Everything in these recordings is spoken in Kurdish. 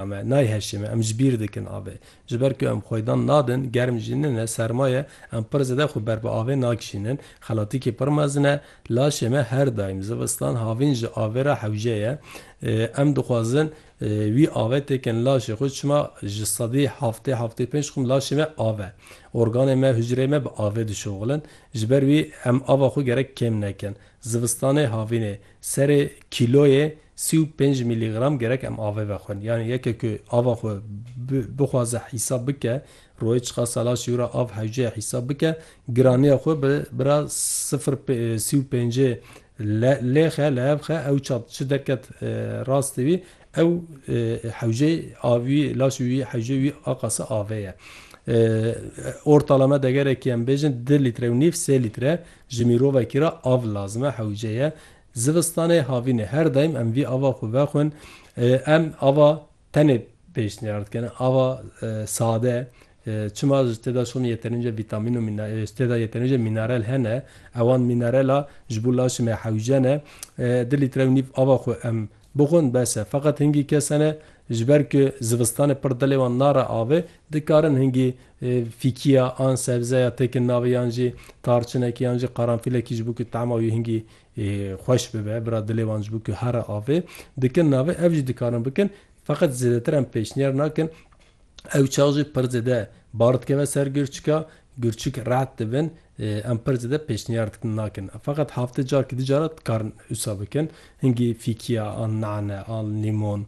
Me nayheşê me em ji bîr dikin avê. Ji ber ku em xwedan nadin, germ jî nine, serma ye, em pir zêde xwe ber bi avê nakişînin. Xelatîkê pir mezin e. Laşê me her daîm zivistan havîn ji avê re hewce ye. Em dixwazin wî avê têkin laşê xwe çima ji sedî heftê, heftê û pênc xwim laşê me av e. Organên me, hucreyên me bi avê dişoxilin. Ji ber wî em ava xwe gerek kêm nekin. Zivistanê havînê Serê kîloyê sî û pênc mîlîgram gerek em avê vexwin. Yanî yekê ku ava xwe bixwaze hîsab bike, rojê çiqas salaşî ûra av hewceye hîsab bike, giraniya xwe bi bira sifir sî û pêncê lêxe, leevxe, ew çad çi derket rastî wî, ew hewceyê avî wî, laşê wî, hewceyê wî a qasa avê ye. Ortalame degerekî em bêjin du lître û nîv, sê lître Ji mirovekî re av lazim e, hewce ye. Zivistanê havînê her daîm em vî ava xwe vexwin. Em ava tenê pêşniyar dikin, ava sade çima ji tê de şon yeterince vîtamîn û ji tê de yeterince mînerel hene. Ewan mînerela ji bo laşê me hewce ne. Du lître û nîv ava xwe em Bixwin bes e, feqet hingî kes hene ji ber ku zivistanê pir dilê wan nare avê, dikarin hingî fîkîya an sebzeya têkin navê yan jî tarçinekî yan jî qaranfîlekî ji bo ku tema wî hingî xweş bibe, bira dilê wan ji bo ku here avê, dikin navê, ev jî dikarin bikin, feqet zêdetir em pêşniyar nakin Ew çax jî pir zêde bar dikeve ser girçika, girçik red dibin, em pir zêde pêşniyar dikin nakin. Feqet heftê carkî du cara dikarin wisa bikin. Hingî fîkîya an nane an lîmon,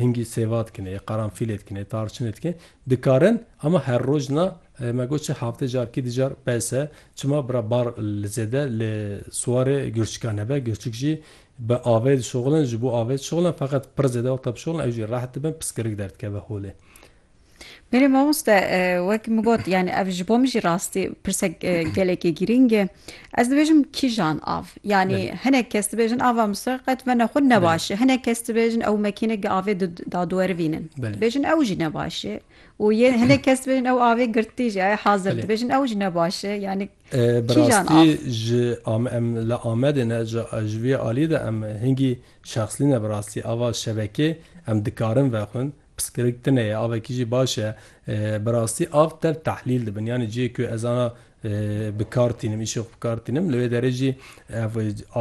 hingî sêva dikin, ê qaranfîlê dikin, ê tarçinê dikin. Dikarin ama her roj na me got çi heftê carkî du car bes e. Çima bira bar li zêde li siwarê girçika nebe, girçik jî Bi avê dişoxilin, ji bo avê dişoxilin feqet pir zêde wexta bişoxilin ew jî reht dibin piskirik derdikeve holê. Berê mamoste wek min got yanî ev ji bo min jî rastî pirsek gelekî girîng e. Ez dibêjim kîjan av? Yanî hinek kes dibêjin ava Mûsir qet vena xwe ne baş e. Hinek kes dibêjin ew mekînik di avê daduerivînin. Dibêjin ew jî ne baş e. Û yê hinek kes dibêjin ew avê girtî jî ye hazir dibêjin ew jî ne baş e. Yanî Bi rastî ji em li Amedê ne ji vê alî de em hingî şexslî ne bi rastî ava şebekê em dikarin vexwin piskirik tine ye avekî jî baş e bi rastî av tev tehlîl dibin yanî ciyê ku ez ana bi kar tînim îşê xwe bi kar tînim li wê derê jî ev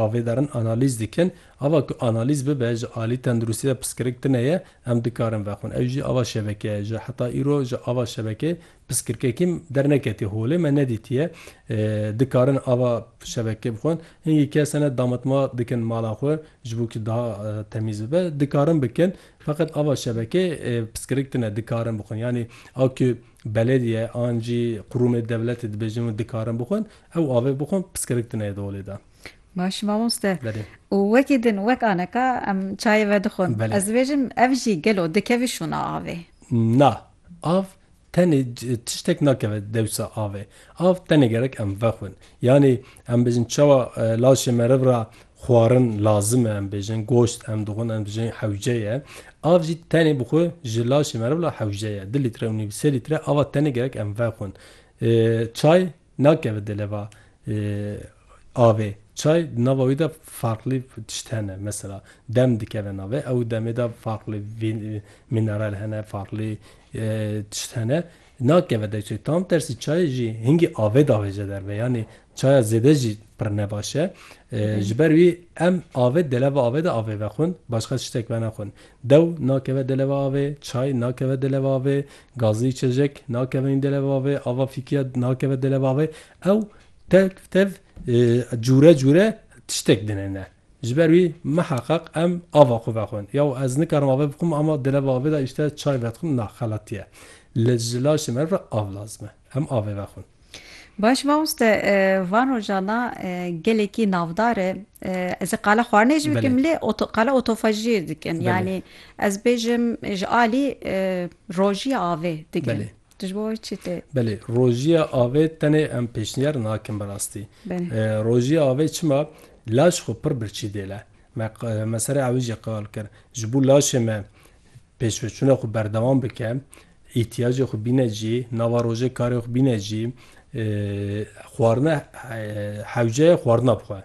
avê derin analîz dikin ava ku analîz bibe ji alî tenduristî de piskirik tine ye em dikarin vexwin ew jî ava şebeke ye ji heta îro ji ava şebekê Piskirkekî derneketiye holê me nedîtiye dikarin ava şebeke bixwin. Hingî kes hene damitma dikin mala xwe ji bo ku daha temîz bibe dikarin bikin feqet ava şebeke piskirik tine dikarin bixwin yanî ew ku belediye an jî qurûmê dewletê dibêjin û dikarin bixwin ew avê bixwin piskirik tine di holê de. Baş mamoste. Belê. Û wekî din wek aneka em çayê vedixwin. Belê. Ez dibêjim ev jî gelo dikevî şûna avê? Na. Av tenê tiştek nakeve dewsa avê. Av tenê gerek em vexwin. Yanî em bêjin çawa laşê meriv ra xwarin lazim e, em bêjin goşt em dixwin, em dibêjin hewce ye. Av jî tenê bi xwe ji laşê meriv la hewce ye. Di lître û nîv, sê lître ava tenê gerek em vexwin. Çay Nakeve di leva avê çay di nava wî de farklî tişt hene mesela dem dikeve navê ew demê de farklî vî mînerel hene farklî tişt hene nakeve de çay tam tersî çay jî hingî avê davêje derve yanî çaya zêde jî pir ne baş e ji ber wî em avê di leva avê de avê vexwin başqa tiştek venexwin dew nakeve di leva avê çay nakeve di leva avê Gazî Çelik, nakeve hîn dêle va vê ava fîkiya nakeve dêle va vê ew tev tev cûre cûre tiştek dinêne. Ji ber wî miheqeq em ava xwe vexwin. Ya û ez nikarim ave bixwim ama dêle va vê de îşte çay vedixwim na xelatî ye. Li ji laşê me re av lazim e. Em avê vexwin. Baş ma uste van rojana gelekî navdar e ez ê qala xwarinê jî bikim lê qala otofajiyê dikim yanî ez bêjim ji alî rojiya avê dikim tu ji bo wê çi tê? Belê rojiya avê tenê em pêşniyar nakin bi rastî rojiya avê çima laş xwe pir birçî dêle me me serê ewê jî qal kir ji bo laşê me pêşveçûna xwe berdewam bike îhtiyacê xwe bîne cî, nava rojê karê xwe bîne cî, xwarina hewceyê xwarina bixwe.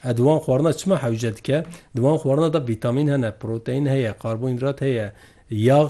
E di wan xwarina çima hewce dike? Di wan xwarina de vîtamîn hene, proteîn heye, karbonhîdrat heye, yax